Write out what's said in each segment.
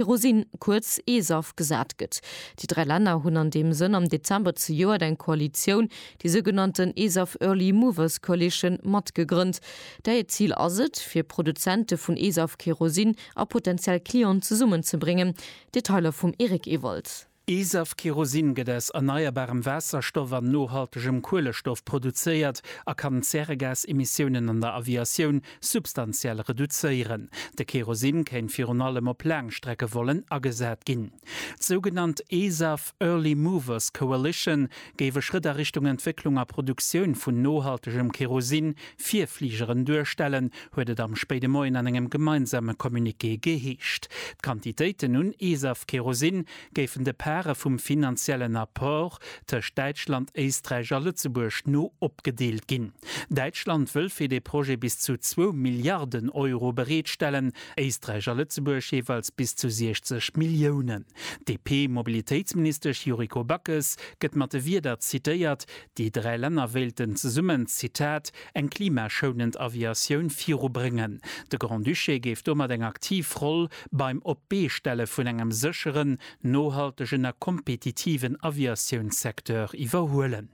Kerosin, kuerz ESAF, gesat gëtt. Déi dräi Länner hunn an deem Sënn am Dezember zejoert eng Koalitioun, déi sougenannten ESAF Early Movers Coalition, mat gegrënnt. Där hiert Zil ass et, fir Produzente vun ESAF-Kerosin a potentiell Clienten zesummenzebréngen. Detailer vum Eric Ewald. Esaf Kerosin gëtt aus erneierbarem Waasserstoff an nohaltegem Kuelestoff produzéiert a kann d'Zäregasemissiounen an der Aviatioun substantiell reduzéieren. De Kerosin kéint virun allem op Laangstreckevollen agesat ginn. D'sougenannt Esaf Early Movers Coalition géif e Schrëtt a Richtung Entwécklung a Produktioun vun nohaltegem Kerosin Virfligeren duerstellen, huet et am spéide Moien an engem gemeinsame Communiqué geheescht. D'Quantitéiten un Esaf Kerosin géifen de Pare vum finanziellen Apport tëscht Däitschland, Éisträich a Lëtzebuerg no opgedeelt ginn. Däitschland wëll fir dee Projet bis zu zwou Milliarden Euro bereetstellen, Éisträich a Lëtzebuerg jeeweils bis zu 60 Milliounen. D'DP-Mobilitéitsministesch Yuriko Backes gëtt mat de Wierder zitéiert, Déi dräi Länner wéilten zesummen, Zitat, eng klimaschounend Aviatioun virubréngen. De Grand-Duché géif domat eng aktiv Roll beim Op-d'Bee-Stelle vun engem sécheren, nohaltegen a kompetitiven Aviatiounssecteur iwwerhuelen.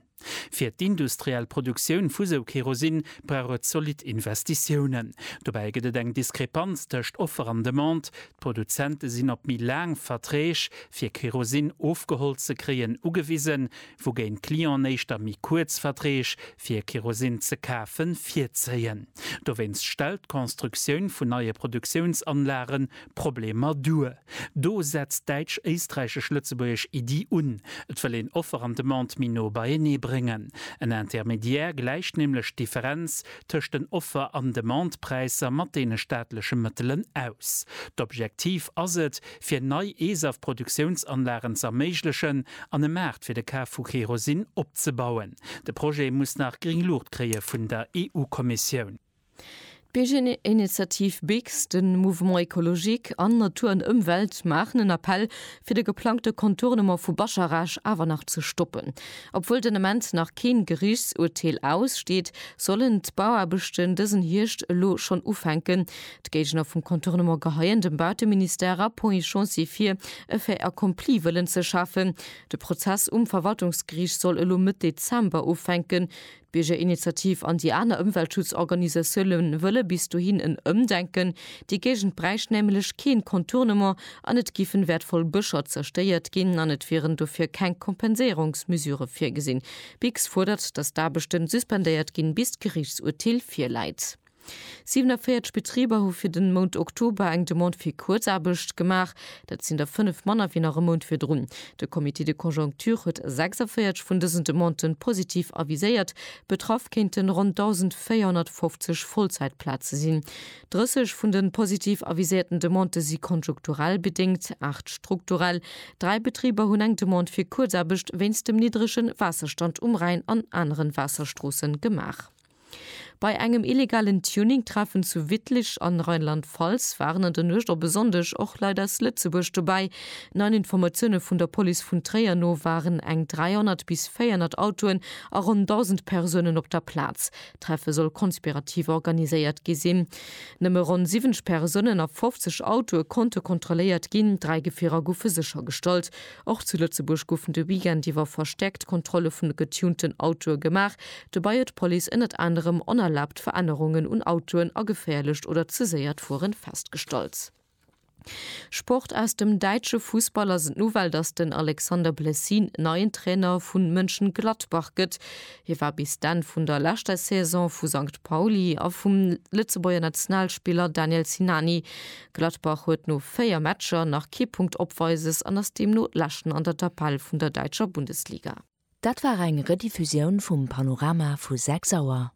Fir d'industriell Produktioun vu sou Kerosin brauch et zolidd Investitiounen. Dobäi gëtt et eng Diskrepanz tëscht Offer an Demande, D'Produzente sinn op méi laang Verträg, fir Kerosin ofgeholl ze kréien, ugewisen. wougéint d'Clienten éischter méi kuerz Verträg fir Kerosin ze kafe virzéien. Dowéinst stellt d'Constructioun vun neie Produktiounsanlage Problemer duer. Do setzt d'däitsch-éisträichesch-lëtzebuergesch Iddi un, et wëll een Offer an Demande méi no beienee bréngen. En Intermédiaire gläicht nämlech d'Differenz tëscht den Offer an Demandepräisser mat deene staatleche Mëttelen aus. D'Objektiv ass et, fir nei ESAF-Produktiounsanlagen z'erméiglechen, an e Maart fir de Kaf vu Kerosin opzebauen. De Projet muss nach gring Luucht kréie vun der EU-Kommissioun. D'Biergerinitiativ BIGS, de Mouvement Ecologique an Natur an Ëmwelt maachen en Appell, fir de geplangte Contournement vu Bascharage awer nach ze stoppen. Obwuel den Ament nach keen Geriichtsurteel aussteet, sollen d'Bauaarbechten dësen Hierscht elo schonn ufänken, D'Géigner vum Contournement geheien dem Bauteministère a Ponts et Chantiers vir, e Fait accompli wëllen ze schafen. De Prozess um Verwaltungsgeriicht soll elo Mëtt Dezember ufänken. D'Biergerinitiativ an déi aner Ëmweltschutzorganisatioune wëlle bis dohin en Ëmdenken. Déi Géigend bräicht nämlech keen Contournement an et giffen wäertvoll Bëscher zerstéiert ginn an et wieren dofir keng Kompenséierungsmesurë virgesinn. Bix fuerdert, datt d'Aarbechten suspendéiert ginn, bis d'Geriichtsurteel virläit. 47 Betriber hu fir de Mount Oktober eng Demande fir Kuerzaarbecht gemaach. Dat sinn der fënnef manner wéi nach e Mount virdrun. De Comité de conjoncture huet 46 vun dësen Demandë positiv aviséiert. Betraff kéinte ronn 1.450 Vollzäitplaze sinn. 30 vun de positiv aviséierten Demandë si konjunkturell bedéngt, aacht strukturell. Dräi Betriber hunn eng Demande fir Kuerzaarbecht wéinst dem niddrege Waasserstand um Rhäin an anere Waasserstroosse gemaach. Bei engem illegalen Tuning-Treffen zu Wittlich an Rheinland-Pfalz waren an der Nuecht op e Sonndeg och Leit aus Lëtzebuerg dobäi. Neien Informatioune vun der Police vun Tréier no waren eng 300 bis 400 Autoen a ronn 1.000 Persounen op der Plaz. D'Treffe soll konspirativ organiséiert gi sinn. Nëmme ronn 70 Persounen a 50 Autoe konnte kontrolléiert ginn, dräi Gefierer goufe séchergestallt. Och zu Lëtzebuerg goufen de Weekend iwwer verstäerkt Kontrolle vun de getunten Autoe gemaach. Dobäi huet d'Police ënnert anerem onerlaabt Verännerungen un Autoen a geféierlecht oder ze séiert Fueren festgestallt. Sport Aus dem däitsche Fussball ass et d'Nouvelle, datt den Alexander Blessin neien Trainer vu Mönchengladbach gëtt. Hie war bis d'Enn vun der leschter Saison vu Sankt Pauli a vum Lëtzebuerger Nationalspiller Daniel Sinani Gladbach huet no 4 Matcher nach kee Punkt Opweises an ass deemno Leschten an der Tabell vun der däitscher Bundesliga. Dat war eng Rediffusioun vum Panorama vu 6 Auer.